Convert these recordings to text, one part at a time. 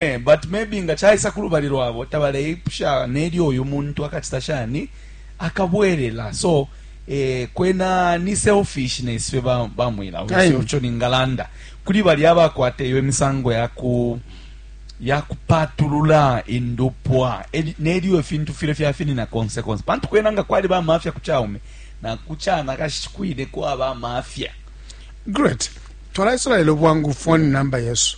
Ee, but maybe nga caisa ku lubali lwabo tabaleipusha nelyo uyu muntu akacita shani, akabwelela. So, eh, kwena ni selfishness fye ba, ba mwila. Uyo Aye. sico ningalanda. Kuli bali abakwata iyo imisango ya ku ya kupatulula indupwa eli- nelyo ifintu file fyafinina konse konse pantu kwena nga kwali bamafya ku caume na ku canakashi kwine kwaba amafya Great. Twala Israel bwangu phone number yesu.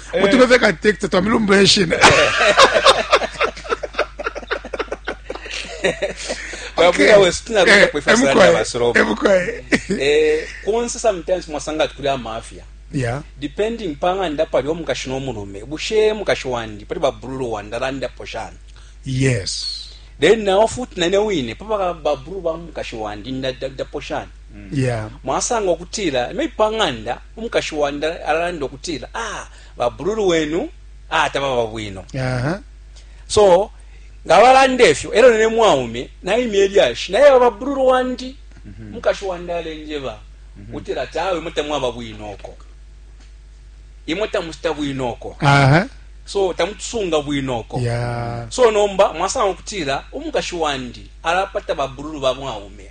Eh. utume fye ka tekita twamilumbu yeshina Babuya wesu tunaruka kwe fasara ya basoroba. emukwaye Eh, konse sometimes mwasanga ati kuli amafya ya depending panga ndapali omukashi n'omurume bushe mukashi wandi pali babululu wandi arandapo shani yes then nawo futi nane wine papa babululu ba mukashi wandi ndadapo shani Mm. Yeah. Mwasanga ukutila maybe pa ng'anda umukashi wandi alalanda ukutila ah babululu wenu ah tababa bwino. Uh -huh. So nga balanda efyo elo ne mwaume naimya elyashi naye babululu wandi mhm. mukashi wandi alenjeba mhm. utila ati awe imwe tamwaba bwino oko imwe tamusita bwino oko uh -huh. so tamutusunga bwino oko yeah. so nomba mwasanga okutila umukashi wandi alapata babululu ba mwaume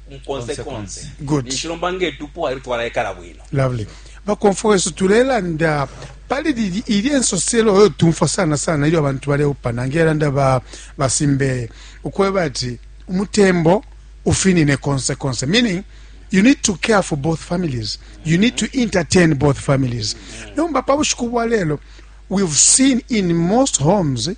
konse konse good nishilomba nge tupo ayo twala ekala bwino lovely bakomfo wesu tulelanda pali lili ili ensoselo oyo tumfwa sana sana ilyo abantu baleupana ngelanda ba basimbeye ukweba ati umutembo ufinine konse konse meaning you need to care for both families you need to entertain both families nomba pa bushiku bwa lelo we've seen in most homes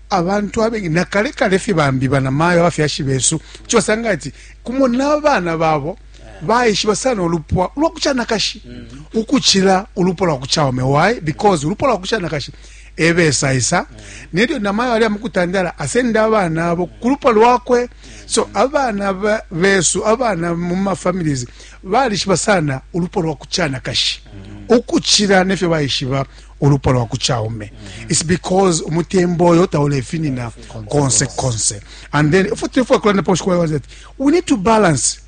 abantu abengi na kale kale fye bambi banamayo abafyashi besu kuti basanga ati kumo n'abaana babo baishiba sana ulupwa lwa kucanakashi mm -hmm. ukucila ulupwa lwa kucaume why because ulupwa lwa kucanakashi ebesaisa mm -hmm. nelyo namayo ali amukutandala asenda abaana abo ku lupwa lwakwe so abaana besu abaana mu mafamilies balishiba sana ulupwa lwa kucanakashi mm -hmm. ukucila nefyo baishiba ulupwa lwa kuchaume it's because umutembo oyo taulefinina konse konse and then ifo tulefwa kulanda pa ushikwa that we need to balance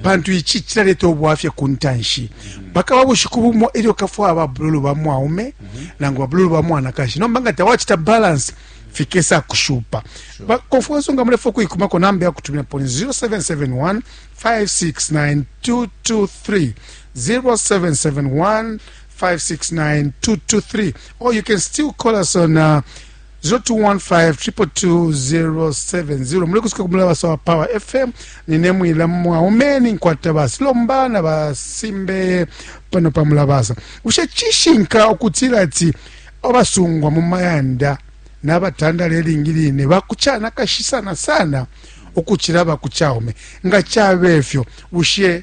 pantu ichi chilaleta obwafya ku ntanshi mpaka wa bushiku bumo elyo kafwa ababululu ba mwaume nangu babululu ba mwanakashi nomba nga tawachita balance fikesa kushupa sure. kofuweso nga mulefa okuikumako namba yakutumira poni 0771 569 223 0771 569-223 or you can still call us on uh, 0215-222-070 muli kusika ku mulaba sawa power fm nine mwila mwaumeni nkwata basi lomba na basimbe pano pa mulabasa bushe cishinka okutila ati abasungwa mu mayanda n'abatandala eringi line bakucana kashi sana sana okucila bakucaume nga cabe efyo bushe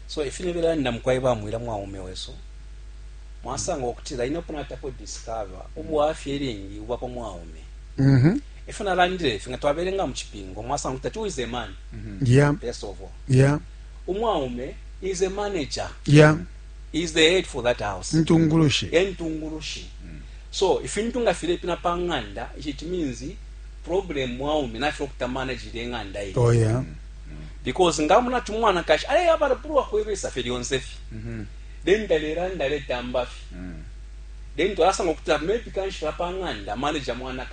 So ifi nibelanda mukwai ba mwila mwaume wesu mwasanga ukutila ine uko natapo discover ubwafya ilingi ubwa pa mwaume mm-hmm. ifyo nalandile ifi nga twabelenga mu cipingo mwasanga ukutila who is a man mm-hmm. first of all yeah. umwaume is a manager yeah. is the head for that house ntungulushi entungulushi mm. so ifintu nga filepina pa ng'anda it means problem mwaume nafyo okuta manage ile ng'anda ye oh, yeah. mm. because ngamona ati umwanakashi aleyabala pulwa kwebesa fye lyonse fye mm-hmm. then talelanda aletamba fye mm. then twalasanga ukuti maybe kanshi lapang'anda manager mwanakashi